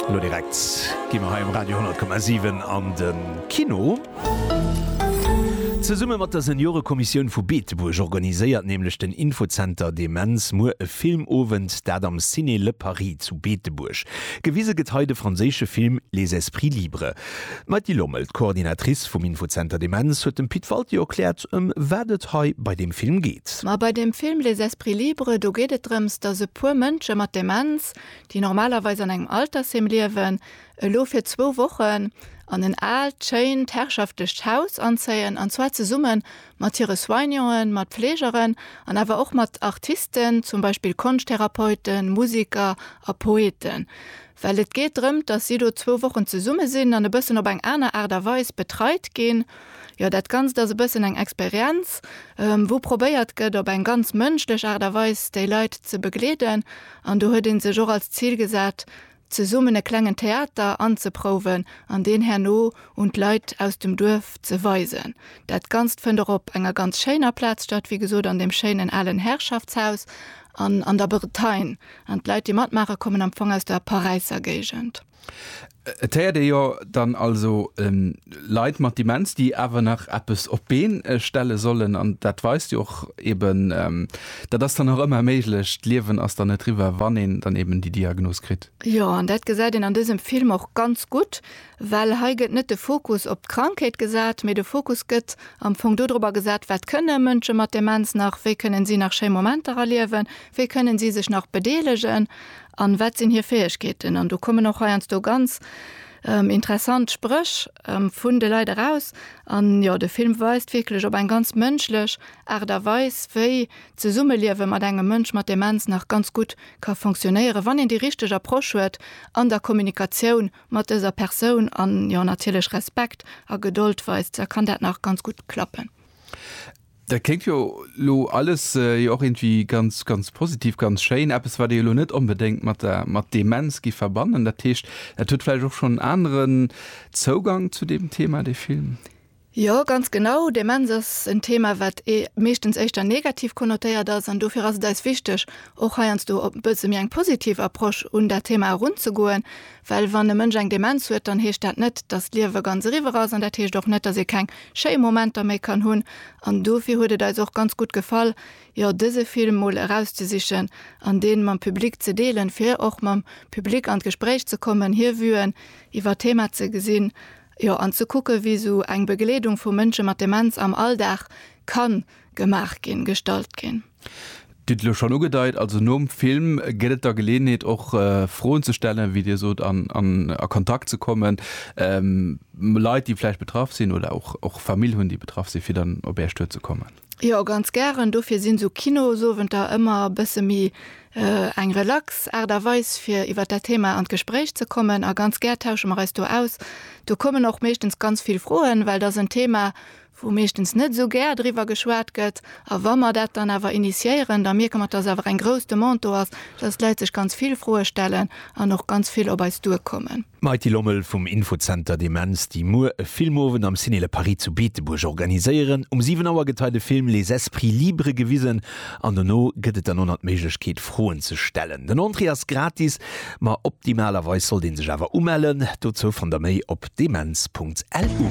Elo direkt gi mer hei um Radio 10,7 an de Kino. Zesumme mat der Seniorekommissioun vu Beetebuerg organiséiert nämlech den Infozenter Demenz muer e Filmowend, dat am Ciné Le Paris zu Beetebuerg. Gewise gëtt hei de franséische Film Les esprits libres. D'Mady Lommel, d'Coordinatrice vum Infozenter Demenz, huet dem Pit Walti erkläert, ëm wat et hei bei deem Film geet. Ma bei deem Film Les esprits libres, do geet et drëms, datt e puer Mënsche mat Demenz, déi normalerweis an engem Altersheem liewen, elo fir zwou Wochen an en aalt, schéint, herrschaftlecht Haus anzéien, an zwar zesumme mat hire Soignanten, mat Fleegeren an awer och mat Artisten, zum Beispill Konschttherapeuten, Musiker a Poeten. Well et geet drëmt, dass si do zwou Wochen zesumme sinn an e bëssen op eng aner Aart a Weis betreit ginn. Jo, dat Ganzt ass e bëssen eng Experienz, wou probéiert gëtt, op eng ganz mënschlech Aart a Weis déi Leit ze begleeden. An do huet ee sech och als Zil gesat, zesummen e klengen Theater anzeprouwen an deen herno un d'Leit aus dem Duerf ze weisen. Dat Ganzt fënnt och op enger ganz schéiner Plaz statt, wéi gesot an deem schéinen alen Herrschaftshaus an an der Bretagne. An d'Leit, déi matmaachen, kommen am Fong aus der Paräisser Géigend. Et héiert ee jo dann also Leit mat Demenz, déi awer nach eppes op d'Been stelle sollen. An dat weist jo och eeben, dat ass dann nach ëmmer méiglech. D'Liewen ass dann net riwwer, wann een dann eeben déi Diagnos kritt. Jo, an dat gesäit een an dësem Film och ganz gutt, well hei gëtt net de Fokus op d'Krankheet gesat, mee de Fokus gëtt am Fong dodrobber gesat, wat kënne Mënsche mat Demenz nach, wéi kënnen si nach schéi Momenter erliewen. Wéi kënnen si sech nach bedeelegen an wat sinn hir Fäegkeeten? An do kommen och heiansdo ganz interessant Spréch vun de Leit eraus. An jo, de Film weist wierklech op eng ganz mënschlech Aart a Weis, wéi d'Zesummeliewe mat engem Mënsch mat Demenz nach ganz gutt ka funktionéieren, wann een déi richteg Approche huet an der Kommunikatioun mat dëser Persoun an jo natierlech Respekt a Gedold weist, da kann dat nach ganz gutt klappen. Dat kléngt jo elo alles jo och iergendwéi ganz, ganz positiv, ganz schéin. Eppes, wat ee jo elo net onbedéngt mat der, mat Demenz giff verbannen. Dat heescht, dat huet vläicht och schonn en aneren Zougank zu deem Thema, dee Film? Jo, ganz genau. Demenz ass en Thema, wat meeschtens éischter negativ konnotéiert ass. An dofir ass et eis wichteg, och heiansdo e bësse méi eng positiv Approche un dat Thema erunzegoen. Well wann e Mënsch eng Demenz huet, dann heescht dat net, dass d'Liewe ganz eriwwer ass an dat heescht och net, dass ee keng schéi Momenter méi kann hunn. An dofir huet et eis och ganz gutt gefall, jo dëse Film mol erauszesichen an dee mam Public ze deelen, fir och mam Public an d'Gespréich ze kommen, hir Vuen iwwer d'Thema ze gesinn, jo an ze kucken, wéi esou eng Begleedung vu Mënsche mat Demenz am Alldag kann gemaach ginn, gestallt ginn. Dir hutt et elo schonn ugedeit, also nom Film gëtt et da Geleeënheet och Froen ze stellen, wéi Dir sot, an a Kontakt ze kommen mat Leit, déi vläicht betraff sinn oder och Famill hunn, déi betraff sinn, fir dann op Äert Stuer ze kommen. Jo, ganz gären. Dofir sinn esou Kinosowenter ëmmer e bësse méi eng relax Aart a Weis, fir iwwer dat Thema an d'Gespréich ze kommen. A ganz gär tausche mer eis do aus. Do kommen och meeschtens ganz vill Froen, well et ass en Thema, wou meeschtens net esou gär driwwer geschwat gëtt, a wa mer dat dann awer initiéieren, da mierke mer, dass awer eng grouss Demande do ass, dass d'Leit sech ganz vill Froe stellen an och ganz vill op eis duerkommen. D'Mighty Lommel vum Infozenter Demenz, déi muer e Filmowend am Ciné Le Paris zu Beetebuerg organiséieren. Um 7 Auer gëtt hei de Film Les esprits libres gewisen an dono gëtt et dann och nach d'Méiglech keet, Froen ze stellen. Den Entrée ass gratis, ma optimalerweis sollt ee sech awer umellen. Dozou fannt der méi op demenz.lu.